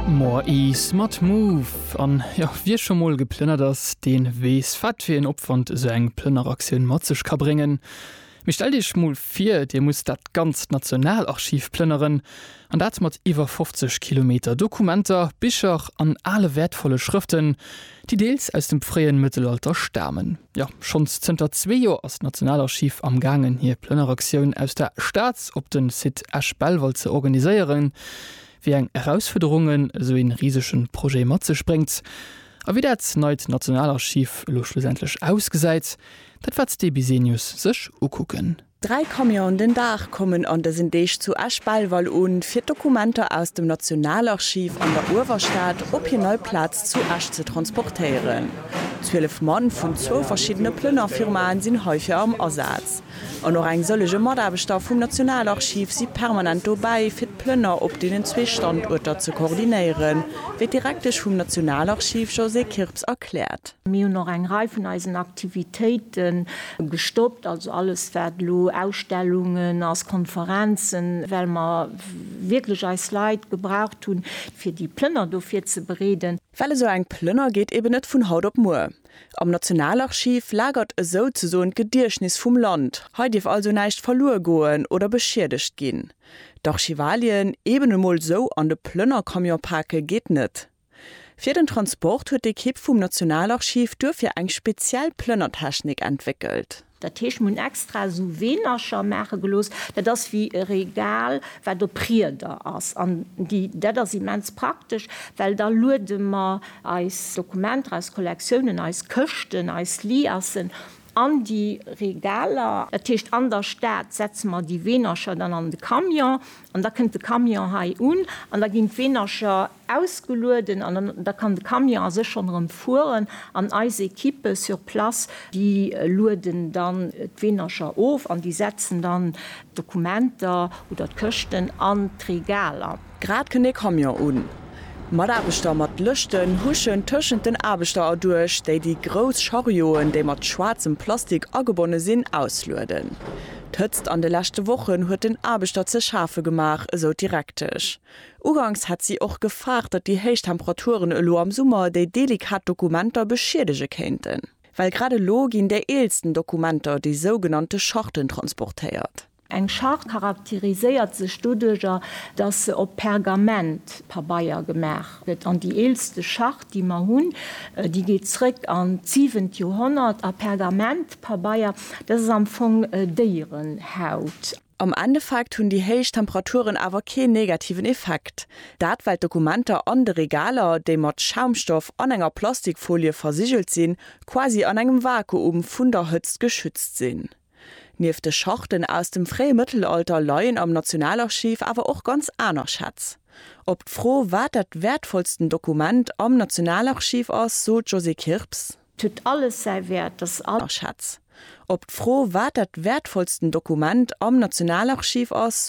More Ease mat Move. An jo, wie scho mol geplënnert ass, deen weess, wat fir een Opwand esou eng Plënneraktioun mat sech ka bréngen. Mee stellt Iech mol vir, Dir musst dat ganzt Nationalarchiv plënneren, an dat mat iwwer 50 Kilometer Dokumenter, Bicher an ale wäertvolle Schrëften, déi deels aus dem fréien Mëttelalter stamen. Jo, schonns zënter zwee Joer ass d'Nationalarchiv am gaangen hir Plënneraktioun aus der Staz op de Site Esch-Belval ze organiséieren. Wéi eng Erausfuerderungen esou ee risege Projet mat sech bréngt a wéi dat neit Nationalarchiv elo schlussendlech ausgesäit, dat wat d'E-Bisenius sech ukucken Dräi Camionen den Dag kommen an dësen Deeg zu Esch-Belval un, fir d'Dokumenter aus dem Nationalarchiv an der Uewerstad op hir nei Plaz zu Esch ze transportéieren. Zwielef Mann vun zwou verschiddene Plënnerfirmaen sinn heifir am Asaz. An och eng sëllege Mataarbechter vum Nationalarchiv si permanent dobäi, fir d'Plënner op deenen zwee Standuerter ze koordinéieren, wéi d'Direktesch vum Nationalarchiv Josée Kirps erkläert. Mir hunn och eng Rei vun eisen Aktivitéite gestoppt, also alles wat elo Ausstellungen ass, Konferenzen, well mer wierklech eis Leit gebraucht hunn, fir déi Plënner do virzebereeden. Well esou eng Plënner geet eben net vun haut op muer. Am Nationalarchiv lagert esou ze soen d'Gediechtnis vum Land, hei dierf also näischt verluer goen oder beschiedegt ginn. D'Archivalien eben emol esou an de Plënnercamion pake geet net. Fir den Transport huet d'Ekipp vum Nationalarchiv duerfir eng speziell Plënnertechnik entwéckelt. Dat heescht, mir hunn extra esou Weenercher maache gelooss, dat ass wéi e Regal, wat op Rieder ass. An déi, dat ass immens praktesch, well da luede mer eis Dokumenter, eis Kollektiounen, eis Këschten, eis Liassen An déi Regaler. Dat heescht, an der Stad setze mer déi Weenercher dann an de Camion an da kënnt de Camion hei un an da ginn d'Weenercher ausgelueden an da kann de Camion a sech schonn erëm fueren an eis Equippe sur place, déi lueden dann d'Weenercher of an déi setzen dann d'Dokumenter oder d'Këschten an d'Regaler. Grad kënnt ee Camion un. Mataarbechter mat Lëschten huschen tëschent den Aarbechter erduerch, déi déi grouss Charioen, déi mat schwaarzem Plastik agebonne sinn, auslueden. D'Hëtzt an de leschte Wochen huet den Aarbechter ze schafe gemaach, esou d'Direktesch. Uganks hätt si och gefaart, datt déi héich Temperaturen elo am Summer déi delikat Dokumenter beschiedege kéinten. Well grad elo ginn déi eelsten Dokumenter, déi sougenannte Charten, transportéiert. Eng Schart charakteriséiert sech doduerjer, datt se op Pergamentpabeier gemaach gëtt. An déi eelste Schart, déi mer hunn, déi geet zréck an d'siwent Joerhonnert. A Pergamentpabeier, dat ass am Fong Déierenhaut. Am Endeffekt hunn déi héich Temperaturen awer keen negativen Effekt. Dat well d'Dokumenter an de Regaler, déi mat Schaumstoff an enger Plastikfolie versigelt sinn, quasi an engem Vakuum vun der Hëtzt geschützt sinn. Nieft de Schachten aus dem fréie Mëttelalter leien am Nationalarchiv awer och ganz aner Schätz. Op d'Fro, wat dat wäertvollsten Dokument am Nationalarchiv ass, sot d'Josée Kirps. Et huet alles säi Wäert, dass all. Schätz. Op d'Fro, wat dat wäertvollsten Dokument am Nationalarchiv ass,